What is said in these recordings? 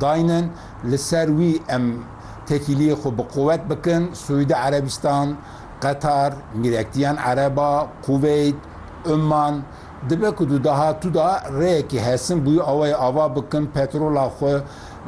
dayne li ser wî em têkîliyê xwe bi quwet bikin, Siûdî Erebistan, Qetar, Mîrektiyan Ereba, Kuveyt, Umman, dibe ku di dahatû de rêyekî hesin bi wî awayê ava bikin, petrola xwe,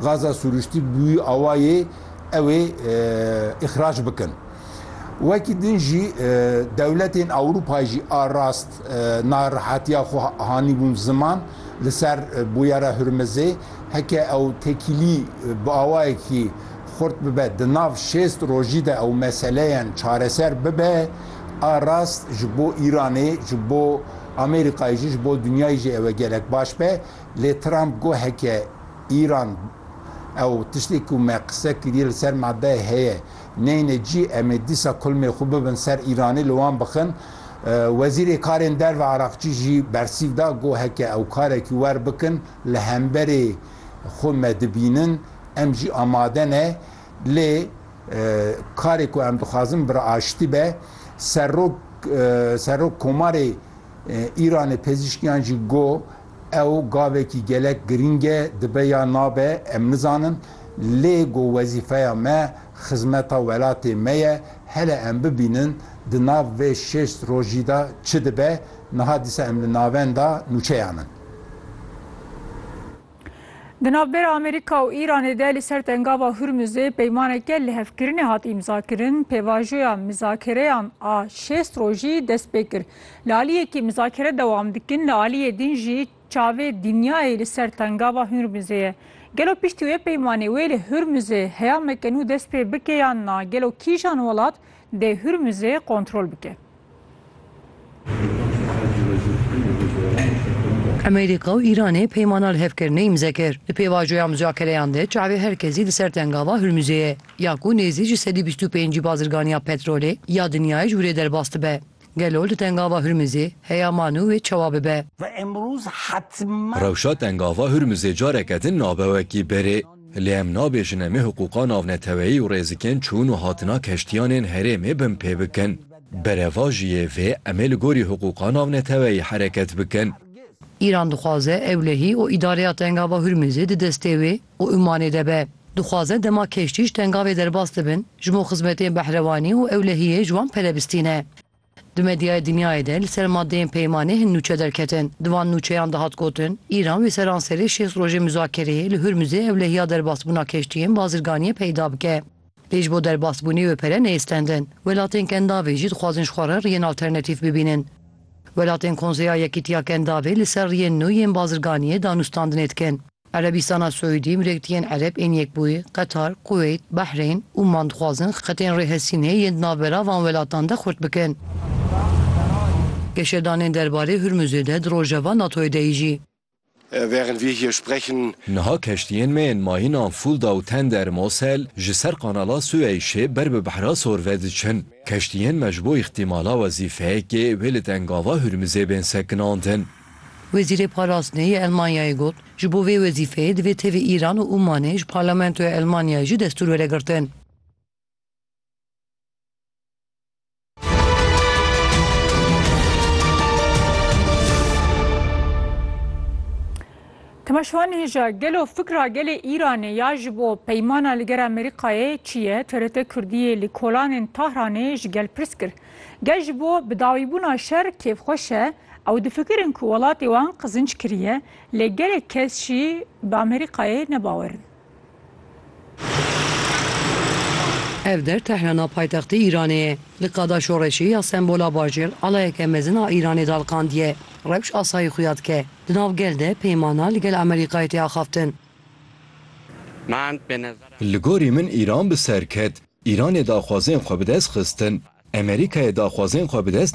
gaza sûrûştî bi wî awayê ew ê îxrac bikin. Wekî din jî dewletên Ewropayê jî a rast narihatîya xwe hanîbûn ziman li ser Bûyera Hurmizê. Heke ew tekîlî bi awayekî xurt bibe, di nav şêst rojî de ew meseleyan çareser bibe, a rast ji bo Îranê, ji bo Amerîkayê jî, ji bo dinyayê jî ew ê gelek baş be. Lê Trump got heke Îran ew tiştê ku me qise kiriye li ser madeyê heye neyne cî, em ê dîsa kulmê xwe bibin ser Îranê li wan bixin. Wezîrê Karên Derve Araqçî jî bersîv da, got heke ew karekî wer bikin, li hemberê xwe me dibînin, em jî amade ne, lê karê ku em dixwazin bi aştî be. Serok Serok Komarê Îranê Pezîşkiyan jî got, Ew gavekî gelek girîng e, dibe ya nabe em nizanin, lê got wezîfeya me xizmeta welatê me ye, hele em bibînin di nav vê şêst rojî de çi dibe, niha dîsa em li navenda nûçeyan in. Di navbera Amerîka û Îranê de li ser tengava Hurmuzê peymaneke lihevkirinê hat îmzakirin, pêvajoya mizakereyan a şêst rojî dest pê kir. Li aliyekî mizakere dewam dikin, li aliyê din jî çavê dinyayê li ser tengava Hurmuzê ye. Gelo piştî wê peymanê wê li Hurmuzê heyameke nû dest pê bike yan na? Gelo kîjan welat dê Hurmuzê kontrol bike? Amerîka û Îranê peymana li hev kirine îmze kir. Di pêvajoya muzakareyan de çavê her kesî li ser tengava Hurmuzê ye, ya ku nêzî ji sedî bîst û pêncî bazirganiya petrolê ya dinyayê ji wrê derbas dibe. Gelo li tengava Hurmuzê heya man û wê çawa bibe? Rewşa tengava Hurmuzê careke din nabe wekî berê. Lê em nabêjin em ê hiqûqa navneteweyî û rêzikên çûn û hatina keştiyanên herêmê bin pê bikin. Berevajiyê vê em ê li gorî hiqûqa navneteweyî hereket bikin. Îran dixwaze ew lehî û îdareya Tengava Hurmizê di destê wê û Umanê de be. Dixwaze dema keştî ji tengavê derbas dibin, ji bo xizmetên behrewanî û ewlehiyê ji wan pere bistîne. Di medyaya dinyayê de li ser madeyên peymanê hin nûçe derketin. Di van nûçeyan de hat gotin, Îran wê seranserê şêst rojê muzakereyê li Hurmuzê ewlehiya derbasbûna keştiyên bazirganiyê peyda bike. Lê ji bo derbasbûnê wê pere neyistendin. Welatên Kendavê jî dixwazin ji xwe re riyên alternatîf bibînin. Welatên Konseya Yekîtiya Kendavê li ser riyên nû yên bazirganiyê danûstandinê dikin. Erebîstana Siûdî, Milektiyên Ereb ên Yekbûyî, Qetar, Kuweyt, Bahreyn, Ûman dixwazin xetên rêhesînê yên di navbera van welatan de xurt bikin. Geşedanên derbarê Hurmuzê de di rojeva NATO'yê de yî jî. Niha keştiyên me yên mayînan Fulda û Tender Mosel ji ser Kanala Sueyşê ber bi Behra Sor ve diçin. Keştiyên me ji bo îxtîmala wezîfeyekê wê li dengava Hurmuzê bên sekinandin. Wezîrê Parastinê yê Elmanyayê got, ji bo vê wezîfeyê divê tevî Îran û Ûmanê ji Parlamentoya Elmanyayê jî destûr were girtin. Temeşvan hêja gelo fikra gelê Îranê ya ji bo peymana li ger Amerîkayê çi ye? TRT Kurdiyê li kolanên Tahranê ji gel pirs kir. Gel ji bo bidawîbûna şer kêfxweş e, ew difikirin ku welatê wan qizinc kiriye, lê gelek kes jî bi Amerîkayê ne bawer in. Ev der Tehrana paytextê Îranê ye. Li qada şoreşê ya sembola bajêr alayeke mezin a Îranê daliqandiye. Rewş asayî xuya dike. Di nav gel de peymana li gel Amerîkayê tê axaftin. Li gorî min Îran bi ser ket. Îranê daxwazên xwe bi dest xistin, Emerîkayê daxwazên xwe bi dest